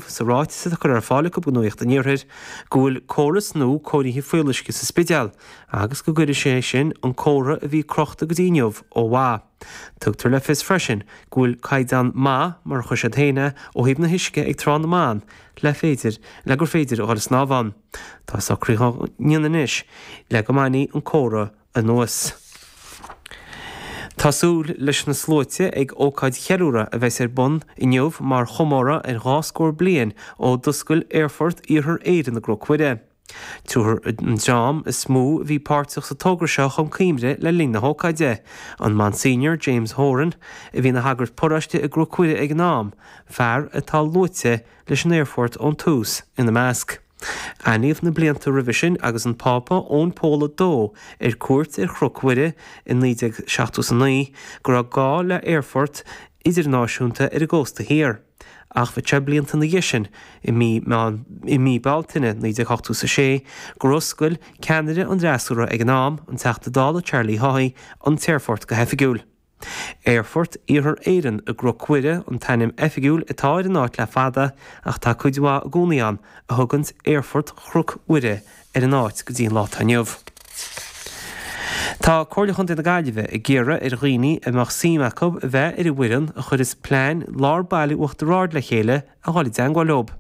sa ráiteas atá curtha ar fáil acu go Nuacht an Iarthair go bhfuil córas nua cóirithe fuíolluisce sa Spidéal agus go gcuireadh sé sin an comhartha a bhí crochta go dtí inniu ó mhaith. Tugtar le fios freisin go bhfuil caighdeán maith, mar a chuir siad féin é, ó thaobh an uisce ag Trá na mBan le féidir le gur féidir a dhul ag snámh ann. Tá socraithe ann anois le go mbainfidh an comhartha anuas. Tá súil leis na sluaite ag ócáid cheiliúradh a bheas ar bun inniu mar chomóradh ar dhá scór bliain ó d'oscail Aerfort Iarthar Éireann i gCnoc Mhuire. Tabharfar an dream is mó a bhí páirteach sa togra seo chun cuimhne le linn na hócáide, an Monsignor James Horan, a bhí ina shagart paróiste i gCnoc Mhuire ag an am, fear atá luaite leis an aerfort ón tús, ina measc. Aithníodh na blianta roimhe sin agus an Pápa Eoin Pól a Dó ar cuairt ar Chnoc Mhuire i 1970 is 9 go raibh gá le h-aerfort idirnáisiúnta ar an gcósta thiar. Ach bhí sé blianta na dhiaidh sin, i mí i mí Bealtaine 1980 is 6 gur oscail ceannaire an Fhreasúra ag an am, an Teachta Dála Charlie Haughey, an t-aerfort go hoifigiúil. Aerfort Iarthar Éireann i gCnoc Mhuire an t-ainm oifigiúil atá ar an áit le fada ach tá cuid mhaith i gcónaí ann a thugann Aerfort Chnoc Mhuire ar an áit go dtí an lá atá inniu. Tá Comhairle Chontae na Gaillimhe ag iarraidh ar dhaoine a mbeadh suim acu a bheith ar an bhfoireann a chuireas plean lár Baile Uachtar Ard le chéile a dhul i dteangmháil leob.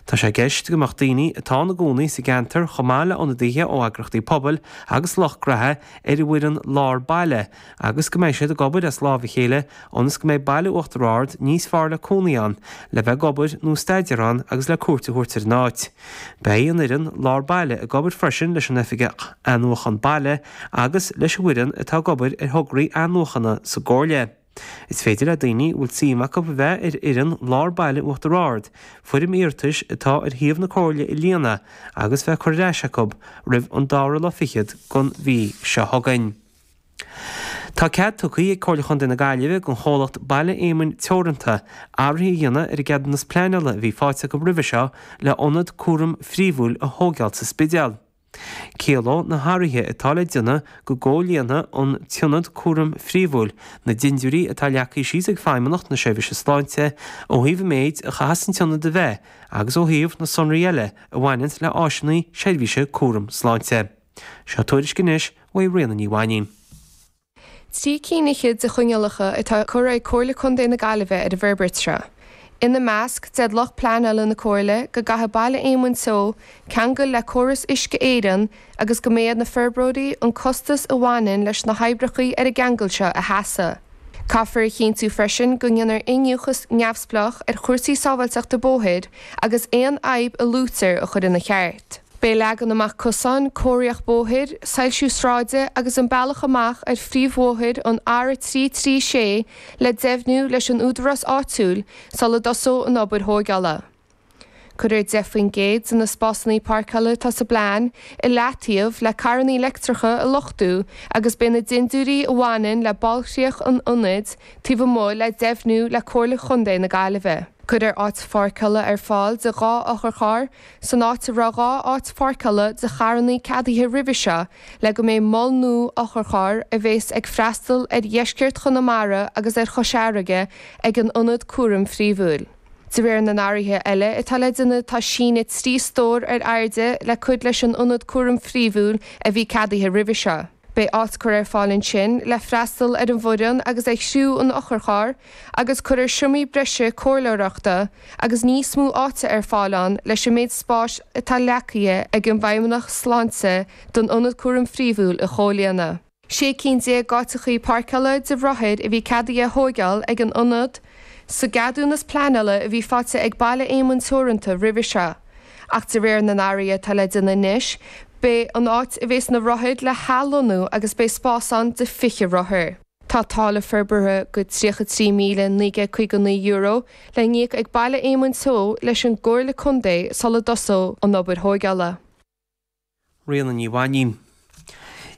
Tá sé i gceist go mbeadh daoine atá ina gcónaí sa gceantar chomh maith le ionadaithe ó eagrachtaí pobail agus lucht gnaithe ar an bhfoireann lár baile agus go mbeidh siad ag obair as lámh a chéile ionas go mbeidh Baile Uachtar Ard níos fearr le cónaí ann, le bheith ag obair nó staidéar ann agus le cuairt a thabhairt ar an áit. Beidh an fhoireann lár baile ag obair freisin leis an Oifigeach Athnuachan Baile agus leis an bhfoireann atá ag obair ar thograí athnuachana sa gComhairle. Is féidir le daoine a bhfuil suim acu a bheith ar fhoireann Lár Baile Uachtar Ard foirm iarratais atá ar shuíomh na Comhairle a líonadh agus í a chur ar ais acu roimh an dara lá fichead den mhí seo chugainn. Tá cead tugtha ag Comhairle Chontae na Gaillimhe don chomhlacht Baile Éamonn Teoranta athruithe a dhéanamh ar an gceadúnas pleanála a bhí faighte acu roimhe seo le hionad cúraim phríomhúil a thóigeáil sa Spidéal. Ciallóidh na hathruithe atá le déanamh go gcomhlíonfaidh an tIonad cúraim phríomhúil na dindiúirí atá leagtha síos ag Feidhmeannacht na Seirbhíse Sláinte ó thaobh an méid a chaithfeas an tIonad a bheith agus ó thaobh na sonraí eile a bhaineann le áiseanna seirbhíse cúraim sláinte. Seo tuairisc anois uaidh Ríona Ní Mhainín. Trí cinn fhichead de choinníollacha atá curtha ag Comhairle Contae na Gaillimhe ar an bhforbairt seo. Ina measc, deir lucht pleanála na Comhairle, go gcaithfidh Baile Éamoinn Teo ceangal le córas Uisce Éireann agus go mbeidh ar na forbróirí an costas a bhaineann leis na hoibreachaí ar an gceangal seo a sheasamh. Caithfear a chinntiú freisin go ndéanar iniúchadh neamhspleách ar chúrsaí sábháilteachta bóthair agus aon fhadhb a luaitear a chur ina cheart. Beidh leagan amach cosáin, cóiríocht bóthair, soilsiú sráide agus an bealach amach ar phríomhbhóthar an R336 le deimhniú leis an údarás áitiúil sula dtosóidh an obair thóigeála. Cuirfear 10% de na spásannaí páirceála atá sa bplean i leataobh le carrannaí leictreacha a luchtú agus beidh na dindiúirí a bhaineann le bailchríoch an ionaid taobh amuigh le deimhniú le Comhairle Chontae na Gaillimhe. Cuirfear áit pháirceála ar fáil de 2 otharcharr san áit a raibh dhá áit pháirceála do charrannaí ceadaithe roimhe seo, le go mbeidh mol nua otharchairr a bheas ag freastal ar dheisceart Chonamara agus ar Chois Fharraige ag an Ionad Cúraim Phríomhúil. De réir na n-athruithe eile atá le déanamh tá síneadh trí stór ar airde le cur leis an Ionad Cúraim Phríomhúil a bhí ceadaithe roimhe seo. Beidh áit curtha ar fáil ansin le freastal ar an bhfoireann agus ar chriú an otharchairr agus cuirfear seomraí breise comhairleoireachta agus níos mó áite ar fáil ann leis an méid spáis atá leacaithe ag an bhFeidhmeannach Sláinte don Ionad Cúraim Phríomhúil a chomhlíonadh. Sé cinn déag d'áiteachaí páirceála do rothair a bhí ceadaithe a thóigeáil ag an Ionad sa gceadúnas pleanála a bhí faighte ag Baile Éamoinn Teoranta roimhe seo. Ach de réir na n-athruithe atá le déanamh anois, beidh an áit a bheas na rothair le hathlonnú agus beidh spás ann de 20 rothar. Tá táille forbartha de €33,959 le n-íoc ag Baile Éamoinn Teo leis an gComhairle Contae sula dtosóidh an obair thóigeála. Ríona Ní Mhainín.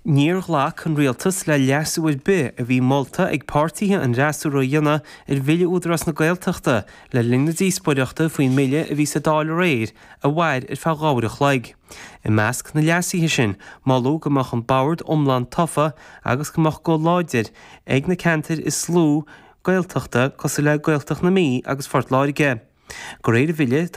Níor ghlac an Rialtas le leasú ar bith a bhí molta ag páirtithe an fhreasúra a dhéanamh ar Bhille Údarás na Gaeltachta le linn na díospóireachta faoin mbille a bhí sa Dáil aréir a mhair ar feadh dhá uair a chloig. I measc na leasuithe sin, moladh go mbeadh an bord iomlán tofa agus go mbeadh guth láidir ag na ceantair is lú Gaeltachta cosúil le Gaeltacht na Mí agus Phort Láirge. De réir an bhille,